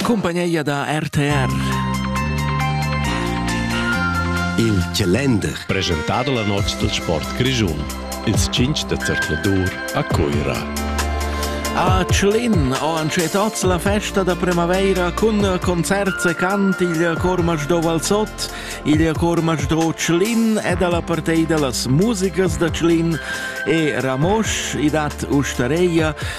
cumpagneia da RTR. Il Calender. Presentado la nox del sport grischun. Ils 5 de Zercladur a Cuira. A Tschlin ho anche tots la festa da primavera cun concerts e cant il Cormac do Valsot, il Cormac do Tschlin ed alla partei dellas musicas da Tschlin e Ramosch i dat ustareia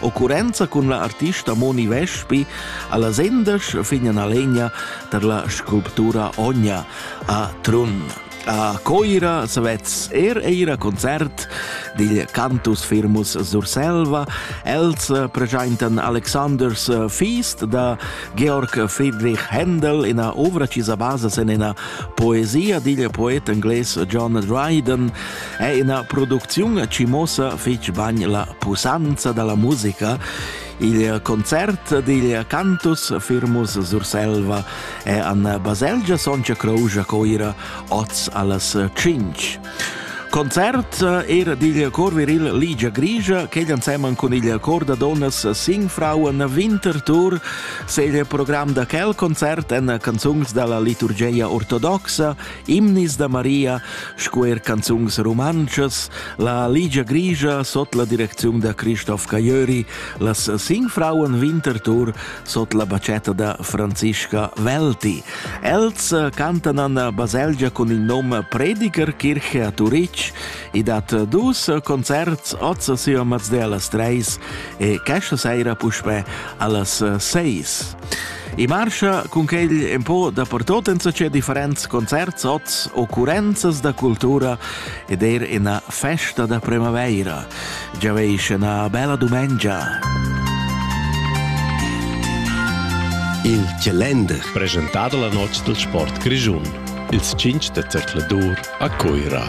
Occurrenza cun la artista Moni Vespi alla sendesch Fignalegna per la sculptura Ogna a Trun. A Coira savez er eir a concert dil cantus firmus Surselva. Els pregentan Alexanders Feast da Georg Friedrich Händel in ovra chisa basa sen ina poesia dil poet engles John Dryden è ina producziun che muossa fitg bagn la pusanza dalla musica. Il concert digl cantus Firmus Surselva è an baselgia Soncia Croja Coira oz allas 5. Concert er digl cor viril Ligia Grigia, che anseman cun il cor da donas Singfrauen Winterthur, se il program da quel concert en canzuns dalla liturgia ortodoxa Imnis da Maria sco er canzuns rumantschas, la Ligia Grigia sot la direcziun da Christoph Cajöri, las Sing Frauen Winterthur sot la bacetta da Franziska Welti. Els cantan an baselgia cun il nom Predigerkirche a Turitg e dat dus concerts oz si a Mazdelas 3 e questa sera puspè allas 6. E marscha cun quegl empò dapertot en che differents concerts, oz occurrenzas da cultura ed er ina festa da primavaira. Già veis ina bella dumengia. Il Calender, presentado la noce del sport grigiun, ils 5 de zercladur a Coira.